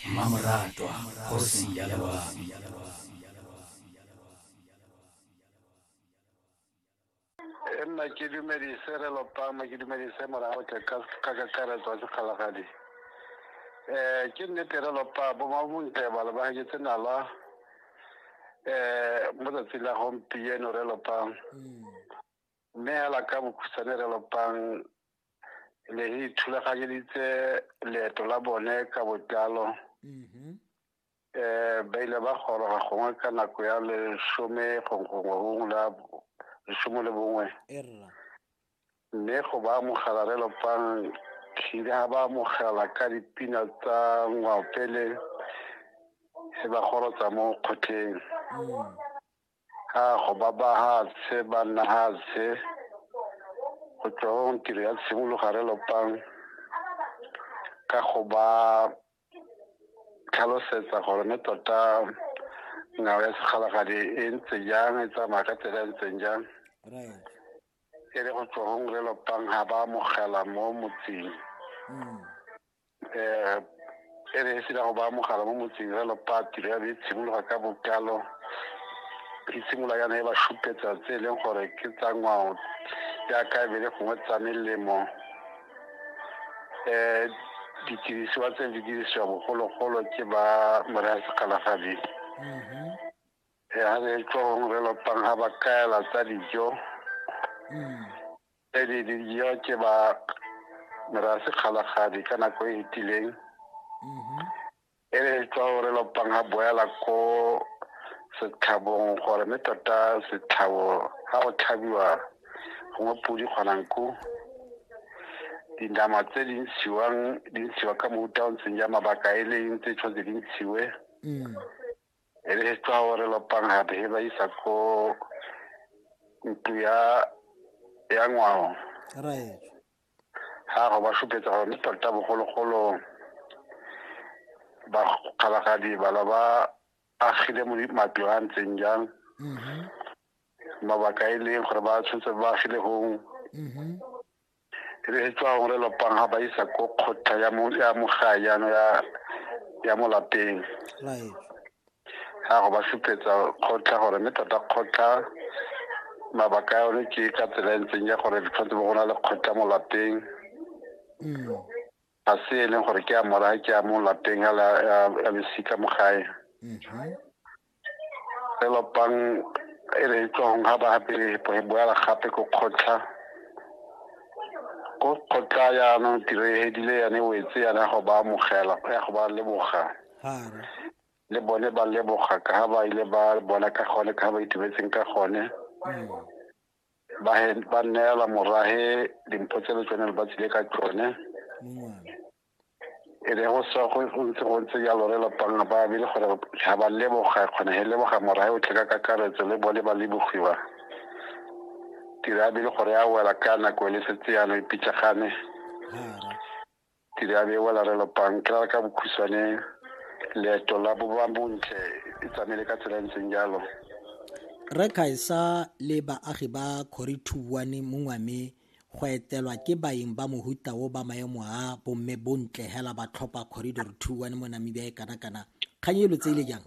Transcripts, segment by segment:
mmamoratwa kgosi ya loabi e nna ke dumedise re lopama ke dumedise morago tle ka ka kakaretso ya sekgalagadi um ke nnete re lopa bomabontle ba lebagetse nala um mo tsatsing la gompieno re lopang Mme hela ka bokhutshwane re lopang le re ithulaganyeditse leeto la bone ka botlalo um ba ile ba goroga gongwe ka nako ya lesome gongwe gongwe la lesome le bongwe mme go ba amogela re lopang tlhile ga ba amogela ka dipina tsa ngwaopele e ba gorotsa mo kgotleng mm. a go ba bahatshe ba nna hatshe go tswa go tiro ya tshimologare lopang ka go ba tlhalosetsa gore ne tota ngwao ya sekgalagadi e ntse jang e tsamaya ka tsela e ntseng jang e le go tswa go ngre lopang ga ba amogela mo motseng mm. um e re e sena go baya mogala mo motseng jalo patiro ya be e tshimologa ka bokalo e simolola yana e ba šupetsa tse e leng gore ke tsa ngwao jaaka e be le gongwe tsa melemo um ditirisiwa tse di dirisiwa bogologolo ke ba moraya sekgalagadi mm-hmm. ya re tswa gongwe re lopang ga ba kaela tsa dijo mm. tse di dijo ke ba merase kgalagadi ka nako e e tileng e re tswa gore lopang ga boela ko setlhabong gore mme tota setlhabo ga go tlhabiwa gongwe podi kgonanku dinama tse di ntshiwang di ntshiwa ka mofuta o ntseng ja mabaka e leng tse tshwanetse di ntshiwe e re tsa gore lopang ga he ba isa ko ntlo ya ya ngwao right ga go ba supetsa gore mme tota bogologolo ba kgalagadi bala ba agile mo matlo a ntseng jang mabaka e leng gore ba tshwanetse ba agile gong e re etswa gore lopang ga ba isa ko kgotla ya mogae yana ya mo lapeng ga go ba supetsa kgotla gore mme tota kgotla mabaka a yone ke ka tsela e ntseng ya gore tshwanetse bo go na le kgotla mo lapeng mm. ga se e leng gore ke a mora ke a mo lapeng a losika mo gae lelopang mhm. e re e tswang ga ba pele e boela gape ko kgotlha ko kgotlha yaanong tiro e hedile yane wetse yana ya go ba amogela ya go ba leboga le bone ba leboga ka ga ba ile ba bona ka gone ka ga ba itumetseng ka gone mm. ba ba neela morahe dimpho tse le tsone le ba tsile ka tsone e re go sa go ntse go ntse jalo re lapang ba be le gore ga ba leboga kgona he leboga morahe o tle ka kakaretso le bone ba lebogiwa tira be le gore a wela ka nako e le setse yana e pitšagane ke di abie wa larelo pang ke rara ka bokhutshwane leeto la boba bontle e tsamaile ka tsela e ntseng jalo re kgaisa le baagi ba kgorithuane mongwame go etelwa ke baeng ba mohuta o ba maemo a bomme bontle hela ba tlhopha corridor two one mo namibia e kana-kana kgang elo tse ile jang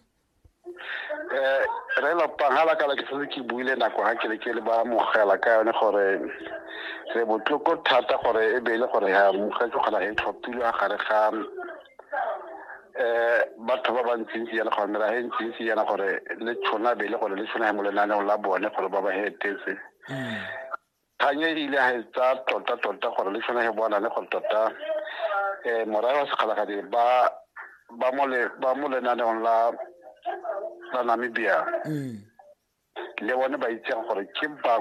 eh re lo pangala ka ke setse ke buile nako ga ke le ke le ba mogela ka yone gore re botloko thata gore e be e le gore ya mogela ke kgona e tlhophile a gare ga eh batho ba bantsintsi yana gore mera e ntsintsi yana gore le tshwana be e le gore le tshwana mo lenaneo la bone gore ba ba hetetse mm. kgang e ile ga e tsaya tota-tota gore le tshwanege bona le gore tota um morae wa sekgalagadi ba ba mo le ba mo lenaneong la la Namibia mm. le bone ba itseng gore ke bangwe